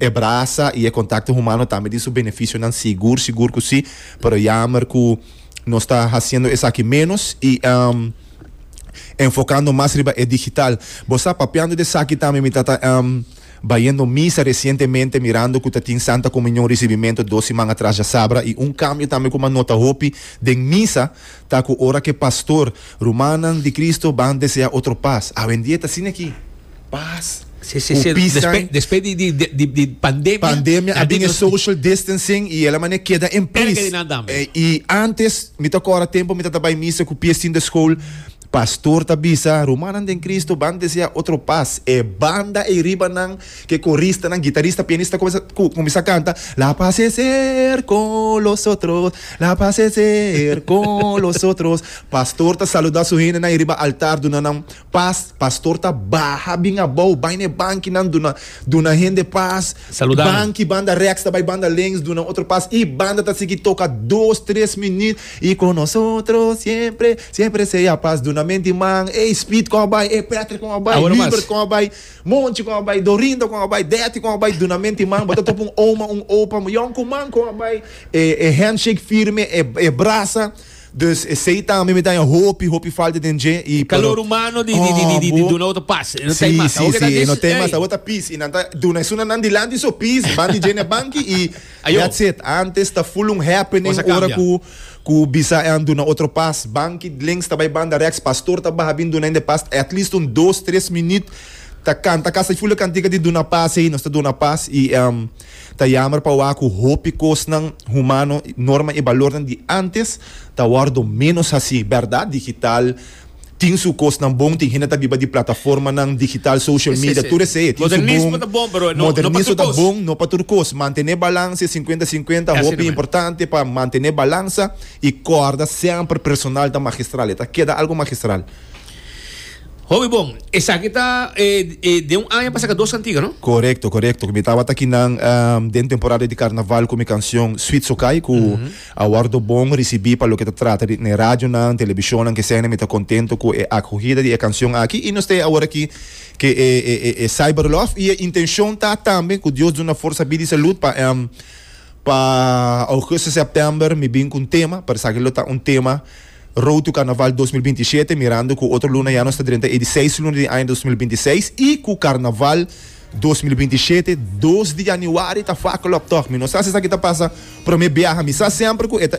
E brasa y e contacto humano tambe tin su beneficionan sigur sigur cu si, pero jammer cu nos ta haciendo esaki menos y enfocando mas riba e digital. Bo sa, papiando di esaki tambe mi ta ta bayendo misa recientemente mirando cu ta tin Santa Comunion Ricibimento dos siman atras djasabra y un cambio tambe cu mi a nota hopi den misa, Ta cu ora ke pastor, rumannan di Cristo ban desea otro paz. Awendia ta asina aki. Paz. Si, si, si. Despe, despe di, di, di, di pandemia. Pandemia a bin e social distancing y el a mane keda en plis. Erga di nan tambe. Y antes, mi ta kora tempo mi ta ta bay misa cu pie sin de school, pastor ta bisa, rumannan den Cristo ban desea otro paz. E banda ey riba nan. Ke koristanan, gitarista, pianista kumesa kuminsá kanta, La pas es er kon los otros, la pas es er kon los otros. Pastor ta saludá su hendenan ei riba altar duna nan pas. Pastor ta baha bin abou, bai na e bankinan duna duna hende pas. Banki banda rèks ta bai banda links duna otro pas i banda ta sigui toka dos tres minüt, Y con nosotros siempre, siempre sea paz. Duna men di man, ey Speed kon a bai, ey Patrick kon a bai, Hubert kon a bai. Monchi kon a bai Dorinda kon a bai Deti kon a bai Dunamenti i man bo ta topa un oma un opa yon ku man kon a bai e e handshake firme e e brasa dus esei tambe mi ta haña hopi hopi falta den dje i pero Calor humano di di di di duna otro pas e no ta si mas si abo ke ta si e no dis ta mas ey abo ta pis i nan ta duna e suna nan dilanti so pis ban di dje na banki i Ajo. that's it antes ta full un happening cosa ora cambia. ku. Ku bisa e anduna otro pas, Banky Dlinks ta bai banda reks, Pastor ta baha bin duna hende pas at least un dos tres minüt ta kanta kasa. I fula kantika di duna pas ei nos ta duna pas i ta yamber pa wak ku hopi kosnan humano, norma i balornan di antes ta wòrdu ménos hasí, bèrdat digital. Tin su kosnan bon, tin hende ta biba di plataformanan digital, social media, tur esei tin su bon. Modernismo ta bon, no pa tur kos. Mantené balansa, e sinkuenta sinkuenta hopi importante pa mantené balansa i kòrda semper personal ta magistral, e ta keda algu magistral. Hopi bon. Esaki ta den un aña pasa ka dos kantiga, no? Korekto, korekto. Mi tabata kinan den temporada di karnaval ku mi kanshon Sweet Sokai ku. A wòrdu bon risibí pa loke ta trata di n'e radionan, telebishonnan ke esèn. Mi ta kontento ku e akohida di e kanshon aki i nos ta e aworakí ke e Cyberlof i e intenshon ta tambe ku Dios duna forsa, bida i salud pa Em. Pa Augusto, Sèptèmber mi bin ku un tema, pa esaki lo ta un tema Road to Karnaval dos mil binti shete, mirando ku otro luna ya nos ta drenta ei di seis luna di aña dos mil binti seis i ku Karnaval. Dos mil binti shete dos di yanuari ta Fakeloptocht mi no sa si esaki ta pasa prome biaha mi sa semper ku e ta